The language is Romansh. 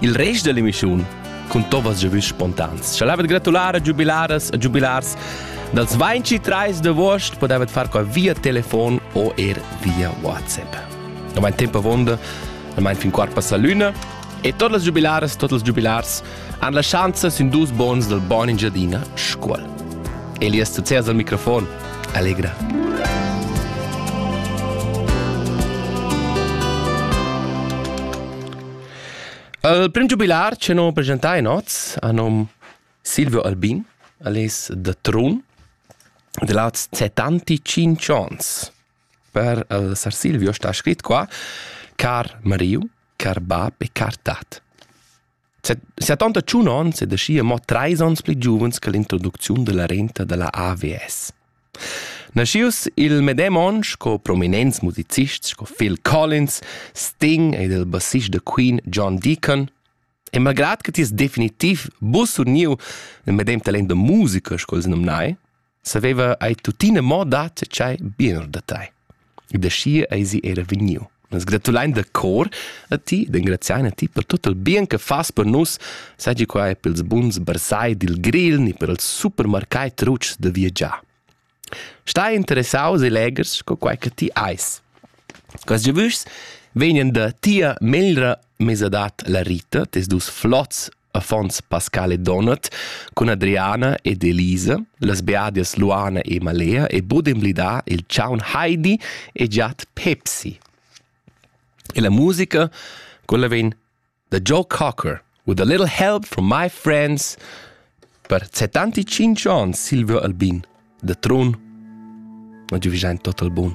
Il rest dell'emissiun cun Tobas giavüsch spontans. Scha l'avet gratular a giubilaras e giubilars dals 23 d'agost podavet far qua via telefon o er via WhatsApp. Ormain tempo avonda, ormain fin quart passa l'una e tot las giubilaras, tot els giubilars han la schanza sin dus bons dal Bon Engiadina Scuol. Elias Tuzers al microfon. Allegra. Il prim giubilar che non presentai in oz a nom Silvio Albin, alias The Trun, de laz 75 ans. Per il sar Silvio sta scrit qua Car Mariu, car bab e car tat. 71 ans e da scia mo 3 ans pli giuvens che l'introducziun della renta della AVS. Naschius il medem onn sco prominents musicists sco Phil Collins, Sting ed il bassist da Queen John Deacon, e malgrad che ti es definitiv bus uniu nel medem talent da musica sco els numnai, saveva ei tuttina mo dat tschei biener da tei. Da schi eisi era vegniu. Nus gratulein da cor a ti, d'engraziar a ti per tut il bien che fas per nus, seigi quai per ils buns bersai dil Grill ni per ils supermercai trucs da viagiar. Stai interessaus e legers co quai che ti eis. Quels giavüschs vegnan da tia meglra mesadad la Rita, tes dus flots affons Pascal e Donat cun Adriana ed Elisa, las beadias Luana e Malea e bod emblidar il chaun Heidi e giat Pepsi. E la musica, quella vegn da Joe Cocker, With a little help from my friends, per 75 ans Silvio Albin, da Trun. Ma giu vigiain tot al bun.